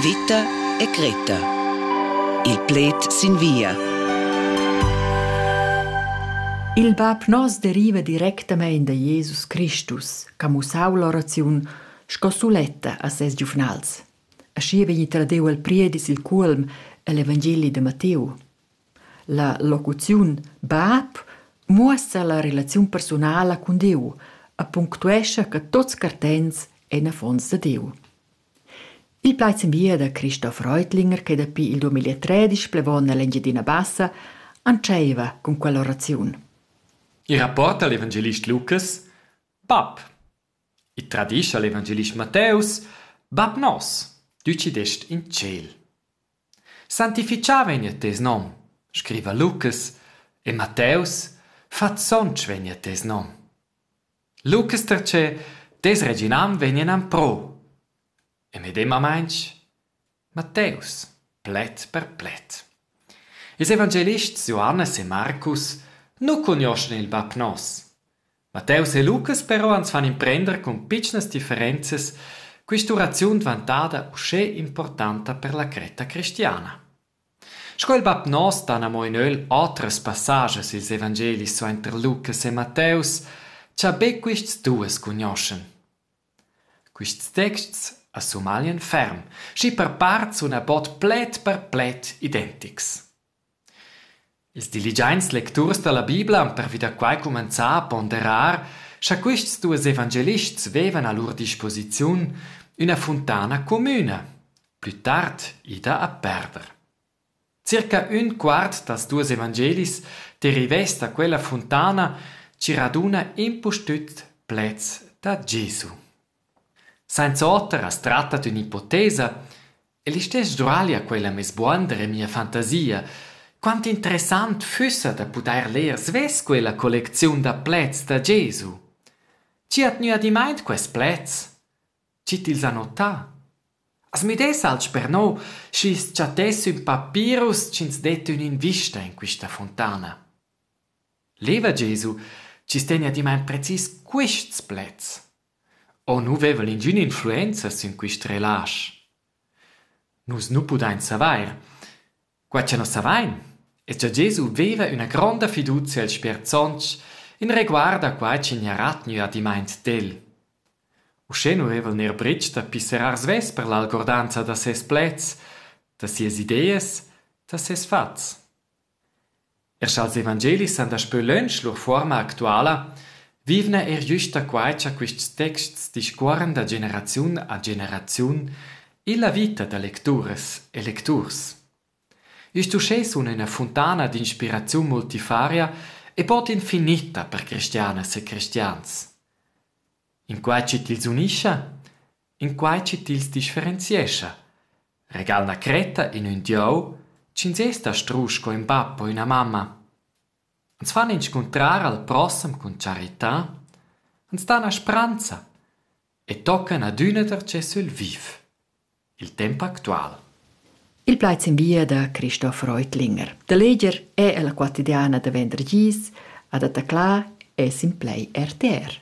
Vita e Greta. Il pled sin via. Il bab nos deriva directamein da Jesus Christus, che mussau l'oraziun sco suletta a ses giuvnals. Aschi vegni tradiu el priedis il cuolm egl Evangeli de Matteu. La locuziun bab muossa la relaziun persunala cun Diu e punctuescha che tuts cartents ein affons da Diu. Il plaid sin via da Christoph Reutlinger che dapi il 2013 plevon nell'Engiadina Bassa antscheiva cun quella oraziun. Il rapport dall'evangelist Lukas Bab. Il tradischa l'evangelist Matteus Bab nos, du ci dest in ciel. Sanctifichamein jeu tes nom, scriva Lucas, e Matteus, fa sontg vegn a tes nom. Lucas pertgei tes reginam vegni en empro. E medemamein Matteus, pled per pled. Ils evangelists Johannes e Marcus nu cugnoschan il bab nos. Matteus e Lucas però ans fan imprender cun pitschnas differenzas quist'uraziun dvantada uschè importanta per la cretta cristiana. Sco il bap nos dan amo in ögl otras passages i'ls evangelis suainter Lucas e Matteus, cha be quists duos cugnoschan. Quists texts as sumaglian ferm, schi per part suna bod pled per pled identics. Ils diligiaints lecturs da la Bibla han pervi da quai cumenzà a ponderar scha quists duos evangelists vevan a lur disposiziun üna funtana comüna, plü tard ida a perder. Circa ün quart dals duos evangelis derivess da quella funtana chi raduna impustüt pleds da Gesu. Sainz'oter as tratta d'ün ipotesa e listess Gioraglia quella mez buonder e mia fantasia. Quant interessant füssa da pudair ler svess quella collecziun da pleds da Gesu. Chi ha tgnü adimaint quaists pleds? Chi tils ha notà? As müdess alch per no, schi's chattess ün papirus chi'ns det ün'invista in quista fontana. Leva Gesu chi's tegna adimaint precis quists pleds. O nu vevan ingün influenza sün quist relasch? Nus nu pudain savair. Quai cha nus savain es cha Gesu veva üna gronda fiduzia als sperdsonts in reguard a quai chi gnarà tgnü adimmaint d'el. Uschè nu veva'l neir brych da pisserar svess per l'algordanza da seis pleds, da sias ideas, da seis fats. Er scha'ls evangelis san daspö lönch lur fuorma actuala, vivna eir güsta quai cha quists texts discuorran da generaziun a generaziun illa vita da lecturas e lecturs. Üst uschè sun üna funtana d'inspiraziun multifaria e bod infinitta per cristianas e cristians. In quai chi tils unischa In quai chi tils differenziescha. Regal 'na cretta in ün dieu, ch'ins es da strusch co ün bap o üna mamma. Ans fan inscuntrar al prossem cun charità, ans dan a spranza e toccan adüna darcheu sül viv. Il temp actual. Il plaid sin via da Christoph Reutlinger. Da leger è la quotidiana da venderdis, adatta clar e sin play RTR.